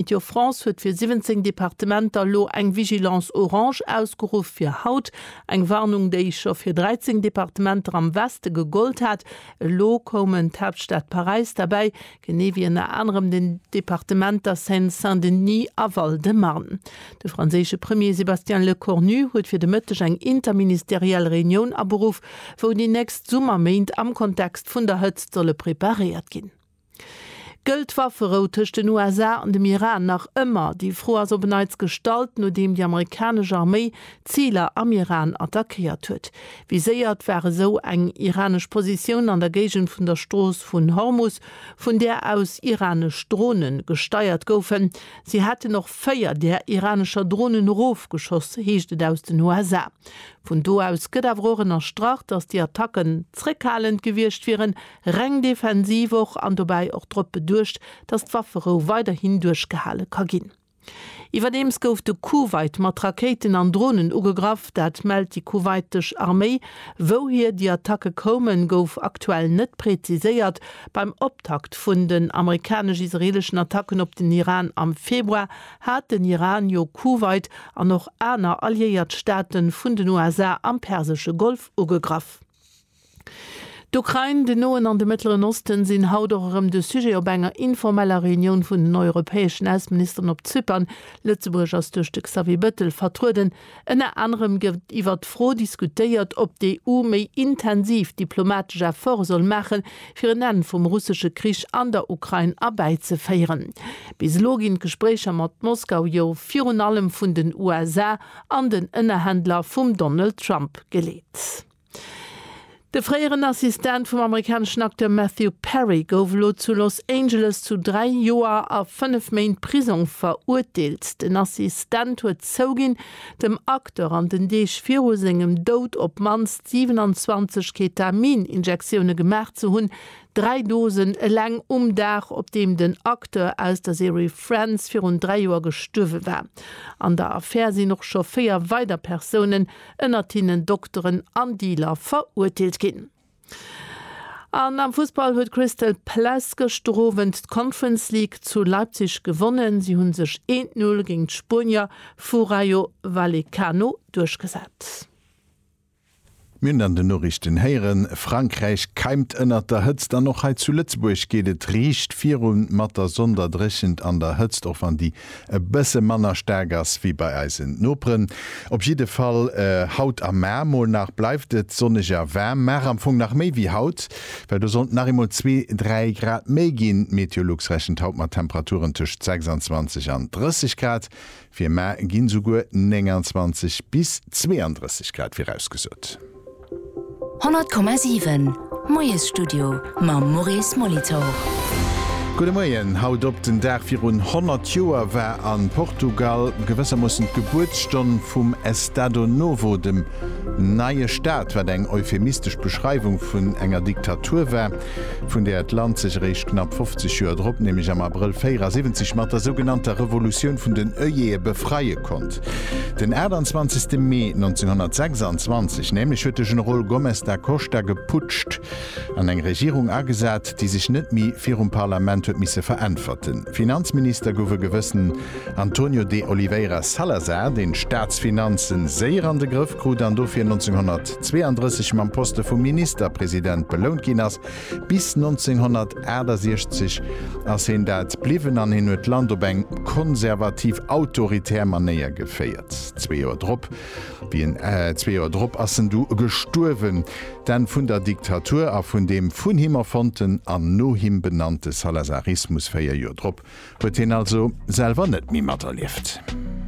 Météo France huet fir 17 Departementer elo eng Vigilance orange ausgeruff fir haut. Eng Warnung, déi scho fir 13 Departementer am Weste gegollt hat. Elo koumen d'Haaptstad Paräis derbäi, genee wéi ënner anerem den Departementer Seine-Saint-Denis a Val-de-Marne. De franséische Premier Sébastien Lecornu huet fir de Mëtteg eng interministeriell Reunioun aberuff, wou déi nächst Summerméint am Kontext vun der Hëtzt solle preparéiert ginn. Gëllt d'Wafferou tëscht den USA an dem Iran nach ëmmer? Déi Fro ass op en Neits gestallt, nodeem déi amerikanesch Arméi Ziler am Iran attackéiert huet. Wéi séiert war esou eng iranesch Positioun an der Géigend vun der Strooss vun Hormus, vun där aus iranesch Drone gesteiert goufen? Si hätten och véier där iranescher Dronen erofgeschoss, heescht et aus den USA. Vun do aus gëtt awer och ënnerstrach, datt déi Attacken zréckhalend gewiescht wieren, reng defensiv och an dobäi och drop beduecht, datt d'Wafferou weiderhin duerchgehale ka ginn. Iwwerdeems gouf de Kuwait mat Rakéiten an Dronen ugegraff, dat mellt déi kuwaitesch Arméi. Wouhier déi Attacke koumen, gouf aktuell net präziséiert. Beim Optakt vun den amerikanesch-israeleschen Attacken op den Iran am Februar hat den Iran jo Kuwait an och aner alliéiert Staate vun den USA am persesche Golf ugegraff. D'Ukrain, den Noen an de Mëttleren Osten sinn haut och erëm de Sujet op enger informeller Reunioun vun den europäeschen Ausseministeren op Zypern. Lëtzebuerg ass duerch de Xavier Bettel vertrueden. Ënner anerem gëtt iwwert d'Fro diskutéiert, ob d'EU méi intensiv diplomatesch Efforte soll maachen, fir en Enn vum russesche Krich an der Ukrain erbäizeféieren. Bis elo ginn d'Gespréicher mat Moskau jo virun allem vun den USA an den Ënnerhändler vum Donald Trump geleet. De fréieren Assistent vum amerikaneschen Acteur Matthew Perry gouf elo zu Los Angeles zu dräi Joer a fënnef Méint Prisong verurteelt. Den Assistent huet zouginn, dem Acteur an den Deeg viru sengem Doud op d'mannst 27 Ketamin-Injektioune gemaach ze hunn, dräi Dosen eleng um Dag, op deem den Acteur aus der Serie Friends virun dräi Joer gestuerwe war. An der Affär sinn och scho véier weider Persounen ënnert hinnen Dokteren an Dealer, verurteelt ginn. An am Fussball huet Crystal Palace gëschter Owend d'Conference League zu Leipzig gewonnen. Si hunn sech 1, 0 géint d'Spuenier vu Rayo Vallecano duerchgesat. Mir hunn an den Noriichten héieren, Frankräich keimt ënnert der Hëtzt an och hei zu Lëtzebuerg geet et riicht virun mat der Sonderdréchent an der Hëtzt, och wann déi e bësse manner staark ass wéi bei eisen Noperen. Op jidde Fall haut a mar mol nach bleift et sonneg a waarm. Mar am Fong nach méi wéi haut, well do sollt et nach eemol zwee, dräi Grad méi ginn. D'Meteolux rechent haut mat Temperaturen tëscht 26 an 30 Grad. Fir mar ginn esouguer 29 bis 32 Grad virausgesot. 100,7 Moiesstudio mam Maurice Molitor. Gudde Moien. Haut op den Dag virun 100 Joer war a Portugal gewëssermoossen d'Gebuertsstonn vum Estado Novo, dem neie Staat, wat eng euphemistesch Beschreiwung vun enger Diktatur war. vun där d'Land sech eréischt knapp 50 Joer drop, nämlech am Abrëll 74 mat der sougenannter Revolutioun vun den Œillée befreie konnt. Den 28 Mee 1926 nämlech huet de Generol Gomes da Costa geputscht an eng Regierung agesat, déi sech net méi virum Parlament huet misse veräntwerten. Finanzminister gouf e gewëssen Antonio de Oliveira Salazar, deen d'Staatsfinanzen séier an de Grëff. krut an dofir 1932 mam Poste vum Ministerpresident belount ginn ass. Bis 1968 ass hien dat bliwwen an hien huet d'Land op eng konservativ autoritär Manéier geféiert. Zwee Joer drop, wéi en, zwee Joer drop ass en du gestuerwen. D'Enn vun der Diktatur a vun deem vun him erfonnten an no him benannte Salazarismus véier Joer drop huet hien also selwer net méi materlieft.